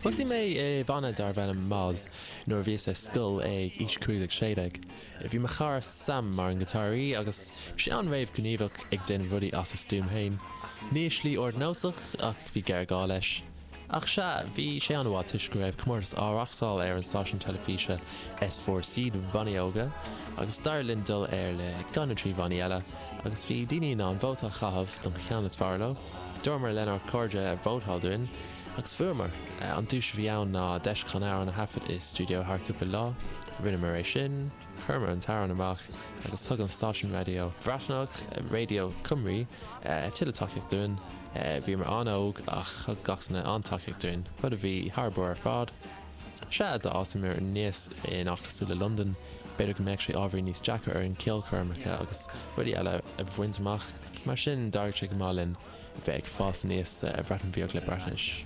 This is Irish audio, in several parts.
Thosaigh mé i bhanna darbh ainm Moz nuair a bhíos ar scoil ag aois cúig déag, sé déag. Bhí mo chara Sam mar an ngiotáraí agus bhí sé an-réamhghníomhach ag déanamh rudaí as a stuaim féin. Ní i slí ardnósach ach bhí géarghá leis. Ach sea, bhí sé an-mhaith toisc go raibh comórtas á reáchtáil ar an stáisiún teilifíse S Four C do bhannaí óga agus d'éirigh linn dul air le ceann de na trí bhannaí eile agus bhí daoine in ann vóta a chaitheamh don gceann is fearr leo. Dúramar lenár gcairde vótáil dúinn agus fuaireamar! An duais a bhí ann ná deis chun amhrán a thaifead i stiúideo thar cúpla lá. Rinneamar é sin. Chuireamar an t-amhrán amach agus thug an stáisiún raidió Bhreatnach, Radio Cymru, tuilleadh tacaíocht dúinn. Bhíomar an-óg ach thug gach duine an-tacaíocht dúinn, rud a bhí thar barr ar fad. Sea, dá bhfásaimis aníos in áit cosúil le Londain, b'fhéidir go mbeadh sé ábhairín níos deacra orainn ceolchoirmeacha agus rudaí eile a bhaint amach, mar sin d'éirigh sé go maith linn bheith ag fás aníos sa Bhreatain Bheag le Breatnais.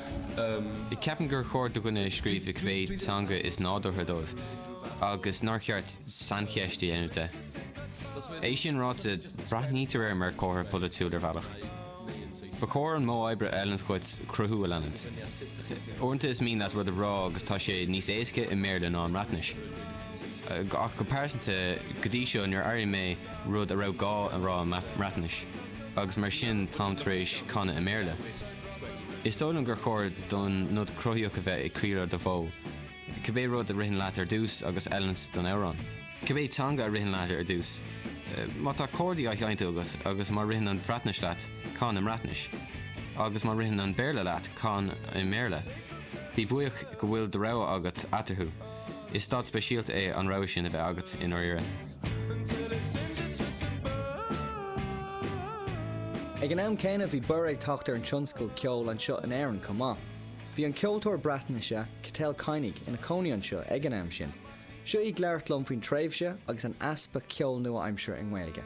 Ceapaim gur chóir do dhuine scríobh i cibé teanga is nádúrtha dóibh, agus nár cheart saincheist a dhéanamh de. É sin ráite, breathnaítear air mar chomhartha polaitiúil ar bhealach. Ba chóir an modh oibre a fheileanns dhuit cruthú a leanúint. Uaireanta is mian leat rud a rá agus tá sé níos éasca i mBéarla ná i mBreatnais. Ach go pearsanta, go dtí seo níor airigh mé rud a raibh gá a rá i mBreatnais, agus mar sin táim tar éis canadh i mBéarla. Is dóigh liom gur chóir don nod cruthaíoch a bheith ag croí ruda, bhuel, cibé rud a ritheann leat ar dtús agus oiriúnach don amhrán, cibé teanga a ritheann leat ar dtús, má tá cordaí á seinnt agat agus má ritheann an Bhreatnais leat, can i mBreatnais, agus má ritheann an Béarla leat, can i mBéarla. Bí buíoch go bhfuil do rogha agat eatarthu. Is staid speisialta é an rogha sin a bheith agat i ndáiríre. Ag an am céanna bhí borradh ag teacht ar an tionscal ceoil anseo in Éirinn chomh maith. Bhí an ceoltóir Breatnaise, Cyteil Kainig, ina cónaí anseo ag an am sin. Seo í ag labhairt liom faoin tréimhse agus an easpa ceoil nua-aimseartha i nGaeilge.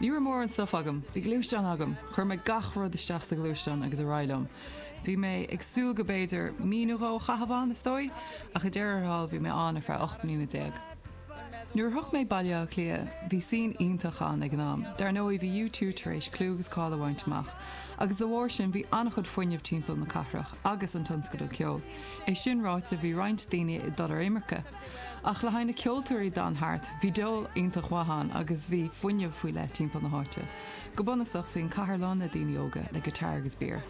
Ní raibh mórán stuif agam. Bhí gluaisteán agam. Chuir mé gach rud isteach sa ghluaisteán agus ar aghaidh liom. Bhí mé ag súil go mb'fhéidir mí nó dhó a chaitheamh ann, is dóigh, ach i ndeireadh thall bhí mé ann ar feadh ocht mbliana déag. Nuair a shroich mé Baile Átha Cliath, bhí scene iontach ann ag an am. Dar ndóigh, bhí U two tar éis clú agus cáil a bhaint amach, agus dá bharr sin, bhí an-chuid fuinneamh timpeall na cathrach agus an tionscadal ceoil. É sin ráite, bhí roinnt daoine ag dul ar imirce. Ach le haghaidh na ceoltóirí a d'fhan thart, bhí dul iontach mhaith ann agus bhí fuinneamh faoi leith timpeall na háite. Go bunúsach, bhí an cathair lán le daoine óga, le guitar agus beer.